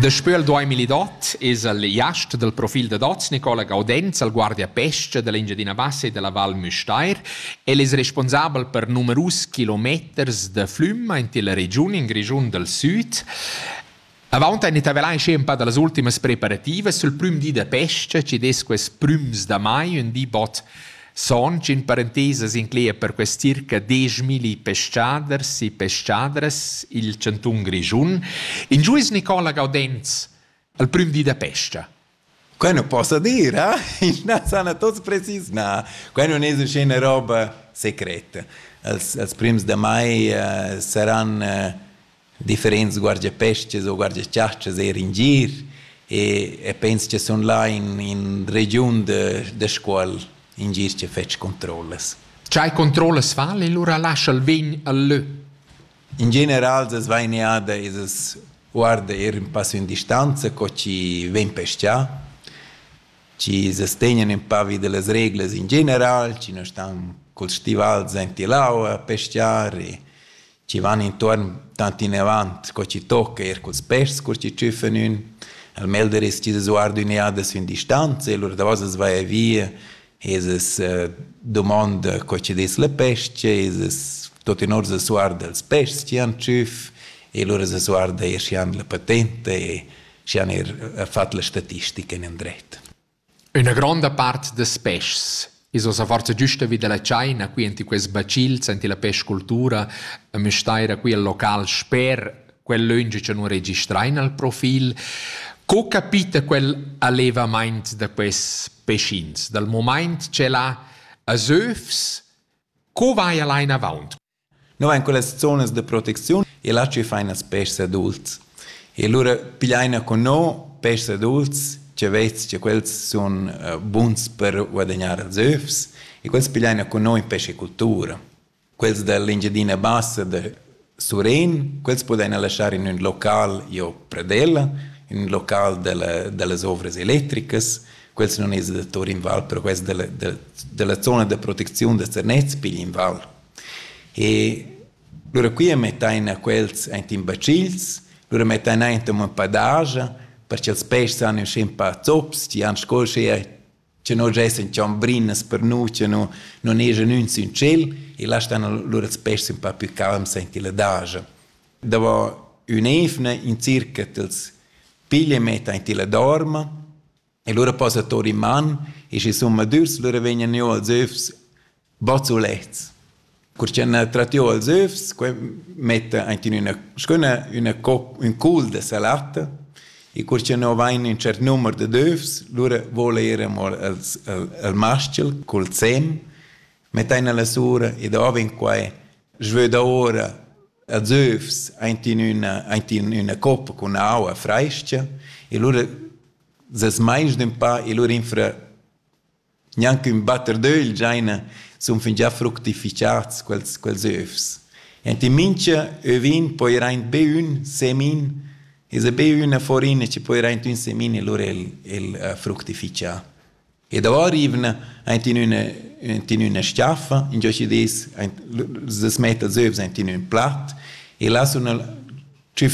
Daspö il 2008 es el jast dal profil dad hoz Nicola Gaudenz al Guardia Pesce da l'Engiadina Bassa e della Val Müstair. El es responsabel per numerus kilometers da flüm aint illa regiun in Grischun dal Süd. Avant ein intervellain schi un pa dallas ultimas preparativas sul prüm di da pesce, chi dess quels prüms da mai ün di bod Sontg in parentesa s'inclegia per quest circa dieschmilli pescaders e pescadras il chantun Grischun. In giuis Nicola Gaudenz al prüm di da pesca. Quai non posso dire, eh? Na, sana tots precis, na. Quai non es uscina roba secreta. Els, els prims de mai uh, saran uh, differents guardiapestgas o guardiachastgas eir in gir e e pens cha sun là in in regiun da da Scuol in gir chi fetsch controllas. Tgei controllas vali lura lascha'l vegn al lö? In general as va in eada e as guarda eir ün passo in distanza co chi vegn pestà, chi as tegnan ün pa vi da las reglas in general, chi non stan culs stivals aint ill'aua a pestgar e chi van intuorn tant inavant co chi tocca eir culs peschs cur chi tschüffan ün. Il melder es chi s'sguarda ün'eada sün distanza e lur davos as vaja via e as dumonda co chi dess la pes-cha e as tuottenà as sguarda ils peschs chi han tschüff e lura as sguarda eir schi han la patenta e schi han eir fat la statistica inandret. Üna gronda part das peschs. I's hoz aforsa güsta vi da la tschaina qui enti quels bacils, enti la peschcultura a Müstair, qui al local sper quel löngi cha nun registrain al profil. Co capita quel allevamaint da quests peschins? Dal mumaint ch'el ha als övs, co vaja là inavaunt? Nus vein quellas zonas da protecziun e là tgi fan ils pèschs adults. E lura pigliaina cun nus pèschs adults tgi vess che quels sun buns per guadagnar ils övs e quels pigliaina cun nus in pescicultura. Quels dall'Engiadina Bassa da Surén, quels pudaina laschar in ün local giò Pradella, in ün local dalla dallas ovras electricas. Quels nun es da tour in val, però quels dalla dalla zona da protecziun da Zernez pigli in val. E lura quia mettain a quels aint in bacils, lura mettain aint amo ün pa daja per cha'ls peschs han ün sch'ün pa zops, chi han sco uschea cha no giessan chambrinas per nu, cha no non eschan ün sün tschel e là stan lura ils peschs ün pa plü calms aint illa daja. Davo ün'eivna in circa t'ls piglia e metta aint illa dorma E lura posa tur in man e sche summadürs lura vegnan jü als öfs bazzulets. Cur cha n'ha trat jü als öfs, que metta aint in üna s-chüna üna cop, ün cul da salatta e cur cha no vain ün tschert numer dad öfs, lura voul eir amo als, al, al maschel cul sem, mettain la sura e davo in quai svöda ora als öfs aint in üna, aint in üna coppa cun aua frais-cha e lura Ses meins d'empau e lur infra gnanc ün batter d'ögl giaina sun fingià fructifichats quels quels övs. Enti mincha övin poira aint be ün semin esa be üna faurina chi poira aint ün semin e lur el el fructifichà. E davo rivna aint in üna aint in üna s-chaffa ingio chi dess aint las metta els övs aint in ün plat e là sun tschüf